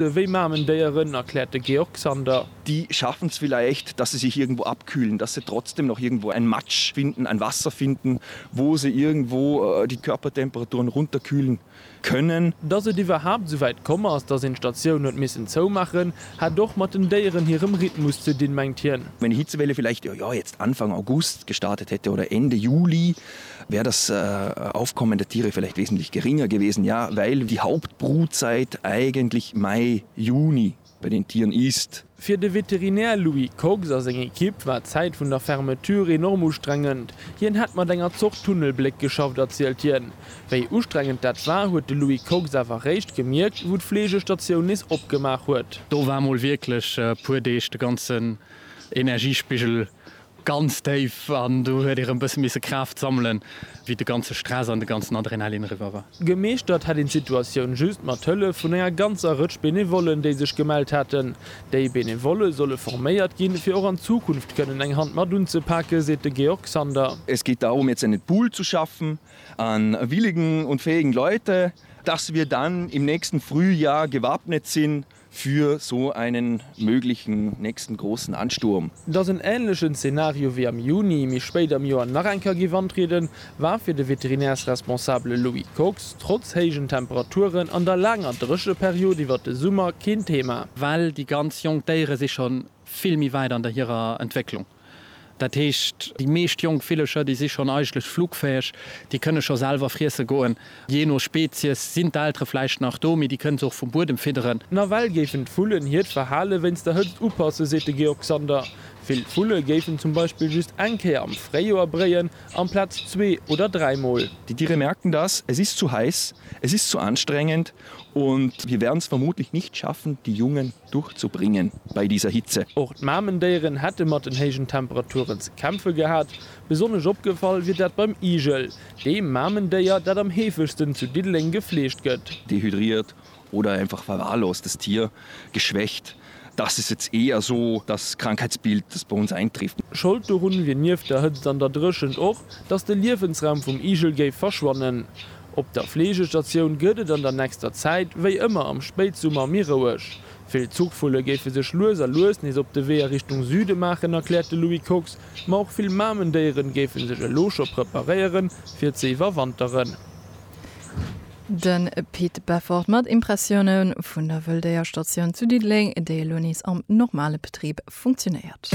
Wéi Mamendéieren, erkläert de Georg Sander. Die schaffen es vielleicht, dass sie sich irgendwo abkühlen, dass sie trotzdem noch irgendwo ein Matsch finden, ein Wasser finden, wo sie irgendwo die Körpertemperaturen runterkühlen können. Dass et iwwerhaapt esou wäit komm ass, dass een d'Statioun huet missen zoumaachen, hätt och mat den Déieren hirem Rhythmus ze dinn, mengt hien. Wenn Hitzewelle vielleicht, jo, jo, jetzt Anfang August gestartet hätte oder Ende Juli, wär das Aufkommen der Tiere vielleicht wesentlich geringer gewesen, ja, weil die Hauptbrutzeit eigentlich Mai, Juni bei den Tieren ist. Fir de Veterinär Louis Kox a seng Ekipp war d'Zäit vun der Fermeture enorm ustrengend. Hien hätt mat enger Zort Tunnelbléck geschafft, erzielt hien. Wéi ustrengend dat war, huet de Louis Kox awer réischt gemierkt, wou d'Fleegestatioun nees opgemaach huet. Do war mol wierklech e puer Deeg de ganzen Energiespigel Ganz déif, an do huet ee rëm bësse misse Kraaft sammelen, wéi de ganze Stress an de ganzen Adrenalin eriwwer war. Gemeeschtert hätt een d'Situatioun just mat Hëllef vun enger ganzer Rëtsch Benevollen, déi sech gemellt hätten. Déi Benevolle solle forméiert ginn, fir och an Zukunft kënnen eng Hand mat unzepaken, seet de Georg Sander. Es geht darum, jetzt einen Pool zu schaffen an willigen und fähigen Leute, dass wir dann im nächsten Frühjahr gewappnet sind, Für so einen möglichen nächsten großen Ansturm. Dass en änlechen Zenario wéi am Juni, méi spéit am Joer nach eng Kéier géif antrieden, war fir de Veterinärsresponsabele Louis Kox trotz héijen Temperaturen an der laanger Drécheperiod iwwert de Summer keen Thema. Well déi ganz jonk Déiere si scho vill méi wäit an der hirer Entwécklung. Dat heescht, déi meescht jonk Villecher, déi si schonn eigentlech flugfäeg, déi kënne scho selwer friesse goen. Jee no Spezies sinn d'Eltere vläicht nach do, mee déi kënne se och vum Buedem fidderen. Nawell géifen d'Vullen hiert Verhale wéinst der Hëtzt upassen, seet de Georg Sander. Vill Vulle géifen zum Beispill just eng Kéier am Fréijoer bréien, amplaz zwee oder dräi Mol. Die Tiere merken das, es ist zu heiß, es ist zu anstrengend und wir werden es vermutlich nicht schaffen, die Jungen Durchzubringen bei dieser Hitze. Och d'Mamendéieren hätte mat den héijen Temperaturen ze kämpfe gehat. Besonnesch opgefall wier dat beim Igel, deem Mamendéier, dat am heefegsten zu Diddeleng gefleegt gëtt. Dehydriert oder einfach verwahrlost, das Tier geschwächt, das ist jetzt eher so das Krankheitsbild, das bei uns eintrifft. Schold dorun wier nieft der Hëtzt an der Dréchent och, dass de Liewensraum vum Igel géif verschwannen. Op der Fleegestatioun gëtt et an der nächster Zäit wéi ëmmer am Spéitsummer méi roueg. Vill Zuchvulle géife sech lues a lues nees op de Wee a Richtung Süde maachen, erkläert de Louis Kox. Ma och vill Mamendéieren géife sech elo scho preparéieren, fir ze iwwerwanteren. De Pit Beffort mat Impressioune vun der Wëlldéierstatioun zu Diddeleng, déi elo nees am normale Betrib funktionéiert.